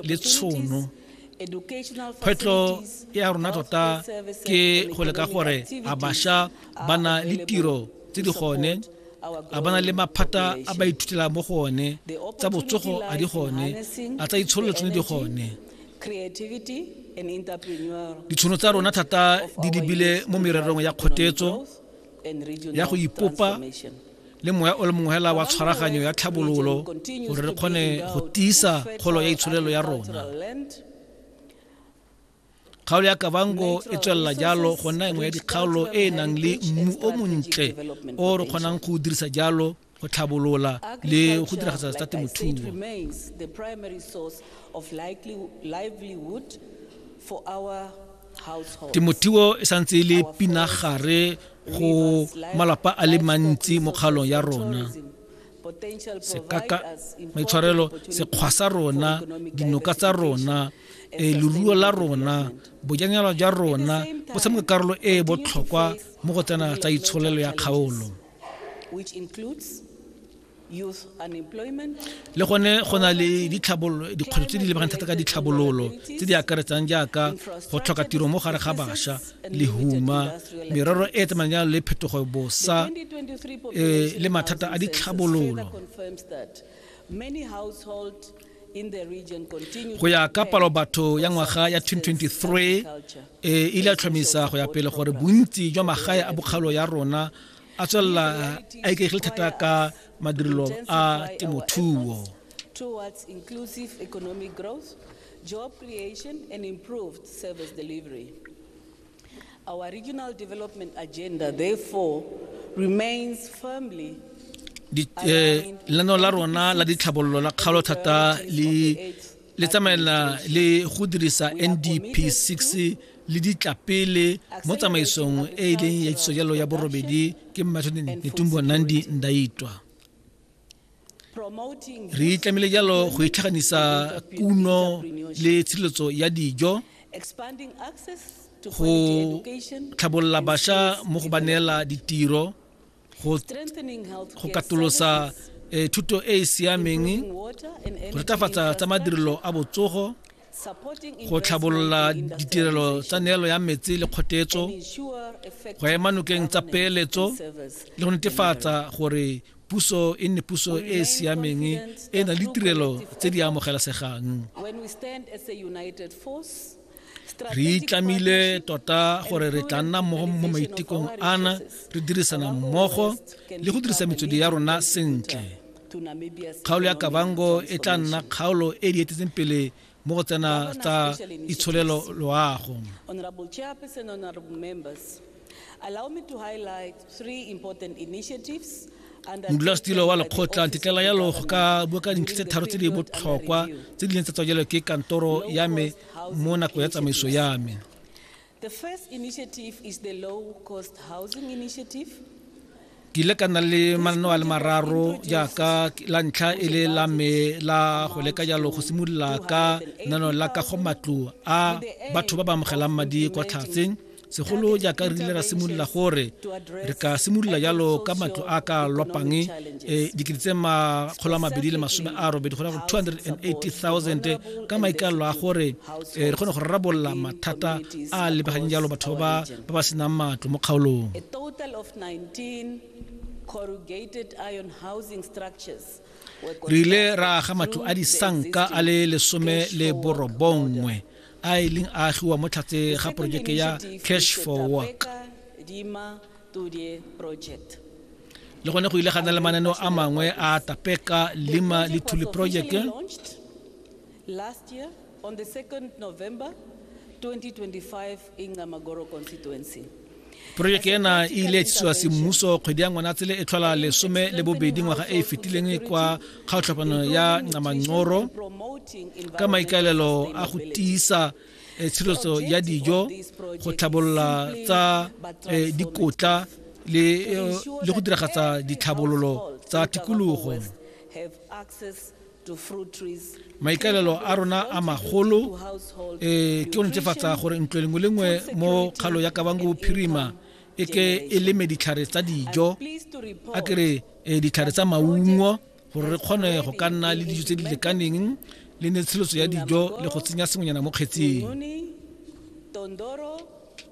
le tshono kgwetlho ya rona tota ke go leka gore a bašwa ba na le tiro tse di gone a bana le maphata a ba ithutela mo go one tsa botsogo a di gone a tsa itshololo tsone di gone ditshono tsa rona thata di lebile mo mererong ya kgotetso ya go ipopa le moya o le mongwe hela wa tshwaraganyo ya tlhabololo gore re kgone go tiisa kgolo ya itsholelo ya rona kgaolo ya kavango e tswelela jalo go nna engwe ya dikgaolo e e nang le mmu o montle o re kgonang go dirisa jalo go tlhabolola le go diragatsa tsa temothuo temothuo e santse e le pinagare go malapa a le mantsi mo kgaolong ya rona sekaka maitshwarelo sekgwa sa rona dinoka tsa rona e leruo la rona bojanela jwa rona bo tshameka karolo e e botlhokwa mo go tsena tsa itsholelo ya kgaolo which includes youth unemployment le gone go na le ditlhabololo dikgwetlho tse di lebagang thata ka ditlhabololo tse di akaretsang jaaka go tlhoka tiro mo gare ga bašwa lehuma merero e e tsamayang jalo le phetogo bosa eh, le mathata a ditlhabololo go ya ka palo batho ya ngwaga ya 2023 e ile a tlhomisa go ya pele gore bontsi jwa magae a bokgalo ya rona a tswelela a ikegile thata ka madirelo a temothuo towards inclusive economic growth, job creation, and improved service delivery. Our regional development agenda therefore remains firmly eh, lenaneo la rona la ditlhabololo la kgaolo thata le le tsamaela le go dirisa ndp 6 le ditla pele mo tsamaisong e e leng ya tsojalo ya borobedi ke mmathone netumbo nandi ndaitwa re tlamehile jalo go itlhaganisa kuno le tshireletso ya dijo go tlhabolola bašwa mo go ba neela ditiro go katolosa eh, thuto e e siameng go retafatsa tsa madirelo a botsogo go tlhabolola ditirelo tsa neelo ya metsi le kgotetso go ema nokeng tsa peeletso le go netefatsa gore puso e nne puso e e siameng e na le tirelo tse di amogelasegang re itlamile tota gore re tla nna mmogo mo maitekong ana re dirisana mmogo le go dirisa metswedi ya rona sentle Kgaolo ya Kavango e tla nna kgaolo e di etetseng pele mo go tsena tsa itsholelo loago. Honorable Chairperson, honorable members, allow me to highlight three important initiatives modulasetilo wa lekgotla ntetlela yalo go ka bua ka dintlha tse tharo tse di botlhokwa tse di leng tsa tswa jalo ke kantoro ya me mo nako ya tsamaiso ya me The first initiative is the low cost housing initiative. ke ile ka nna le mananeo a le mararo jaaka la ntlha e le la me la go leka jalo go simolola ka nano la ka go matlo a batho ba ba amogelang madi kwa tlhatseng segolo jaaka re ile ra simolola gore re ka simolola jalo ka matlo a ka lopang e dikete tse makgolo a mabedi le masome a robedi go ya go 280 000 ka maikaelelo a gore e re kgone go rarabolola mathata a a lebegang jalo batho ba ba ba senang matlo mo kgaolong re ile ra aga matlo a disanka a le lesome le borobongwe a e leng a agiwa mo tlhatse ga porojeke ya cash for work le gone go ile ga na le mananeo a mangwe a tapeka lima le thuli project Last year, on the 2nd November 2025 in Ngamagoro constituency. Projeke ena e ile tsiwa semmuso kgwedi ya ngwanatsele e tlhola lesome le bobedi ngwaga e e fetileng kwa kgaotlhapano ya Nqamangcoro ka maikaelelo a go tiisa eh, tshireletso ya dijo go tlhabolola tsa eh, dikotla le eh, le go diragatsa ditlhabololo tsa tikologo maikaelelo a rona a magolo um ke go netefatsa gore ntlo lengwe le nngwe mo kgalo ya kabango bophirima e ke e leme ditlhare tsa dijo a kere um ditlhare tsa maungo gore re kgone go ka nna le dijo tse di lekaneng le netsheletso ya dijo le go tsenya sengwenyana mo kgetseng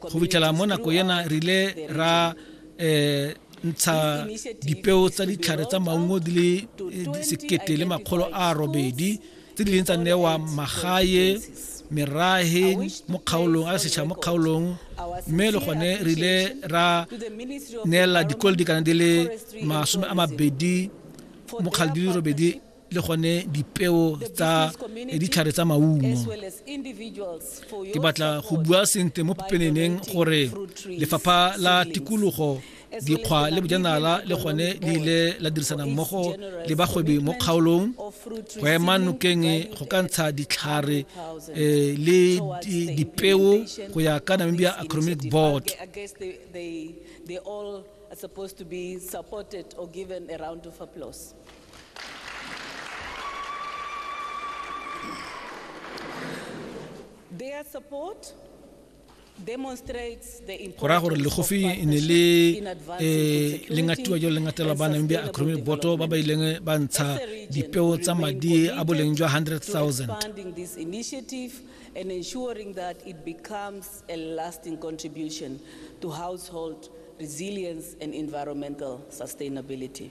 go fitlhela mo nako ena re ile ra um ntsha dipeo tsa ditlhare tsa maungo di le eh, sekete le makgolo a robedi tse di leng tsa newa magae merahe mo kgaolong a setšhaba mo kgaolong mme le gone re ile ra neela dikolo dikana di le masome a mabedi mokgale di le robedi le gone dipeo tsa eh, ditlhare tsa maungo ke batla go bua sentle mo pepeneneng gore lefapha la tikologo dikgwa le bojanala le gone le ile la dirisana mmogo le bagwebi mo kgaolong go ema nokeng go ka ntsha ditlhare eh, le dipeo go ya ka namibia economic board go raya gore legofi e ne le eh, le ngatiwa jalo le ngatela ba nang bja acromy boto ba ba ileng ba ntsha dipeo tsa madi a boleng jwa 100,000 and ensuring that it becomes a lasting contribution to household resilience and environmental sustainability.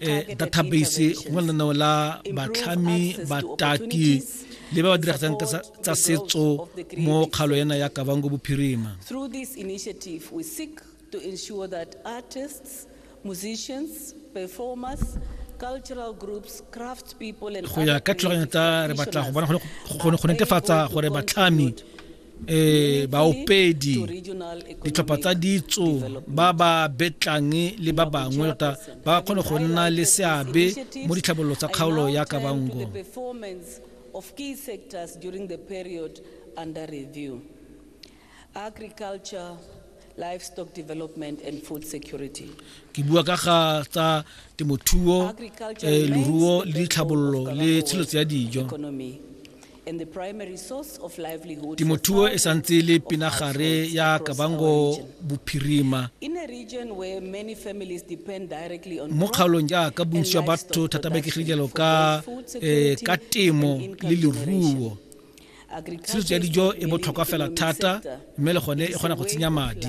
eh, database go lenaneo la batlhami bataki le ba ba diragatsang tsa setso mo kgalo ena ya kabango bophirima to ensure that artists, musicians, performers, cultural groups, craft people and go ya ka tlholaganyo tsa re batla go bona go netefatsa gore batlhami eh baopedi ditlhopha tsa ditso ba ba betlang le ba bangwe tota ba kgone go nna le seabe mo ditlhabololo tsa kgaolo ya kabango of key sectors during the period under review agriculture livestock development and food security ke bua ka ga tsa temothuo eh, leruo le ditlhabololo le tshiletso ya dijo temothuo e santse e le pinagare ya kabango bophirima mo kgaolong jaaka bontsi jwa batho thata ba ikegilelo ka eh, ka temo le leruo tshiso ya dijo e botlhokwa fela thata mme le gone e kgona go tsenya madi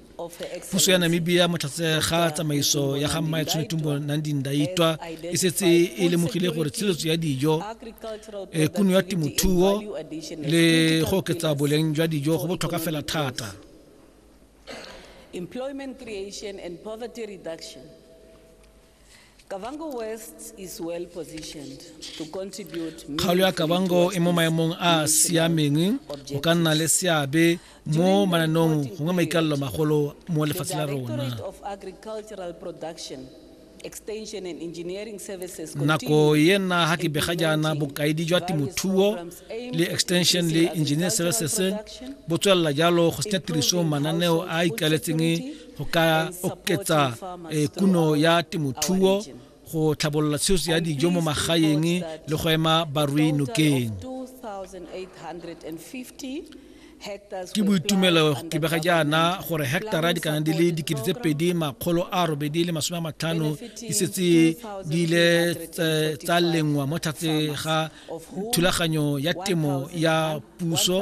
puso ya namibia motlhatse ga tsamaiso ya ga mmae tshwenetumbo nandi ndaitwa e setse e lemogile gore tshiletso ya dijo e kuno ya temothuo le go oketsa boleng jwa dijo go botlhokwa fela thata employment creation and poverty reduction Kavango West is well positioned to contribute kgaolo ya kabango e mo maemong a a siameng go ka nna le seabe mo mananong gongwe maikalelo magolo mo lefatshe la rona Directorate of Agricultural Production, Extension and Engineering Services nako continues ena ga ke bega jaana implementing bokaedi jwa various temothuo programs aimed le at extension le increasing engineer agricultural services production, bo tswelela jalo go senya improving tirisong mananeo a a household ikaletseng security, go ka oketsa eh, kuno ya temothuo go tlhabolola tsheso ya dijo mo magaeng le go ema barui nokeng ke boitumelo ke bega jaana gore hectara di kana di le dikete tse pedi makgolo a robedi le masome a matlhano di setse di ile tsa lengwa mo tlhatse ga thulaganyo ya temo ya puso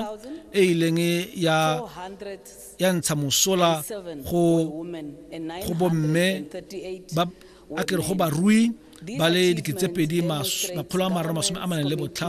e ileng ya ya ntsha mosola go go bomme ba a kere go barui ba le diketsepedi makgolo a mararo masome a maneng le botlhano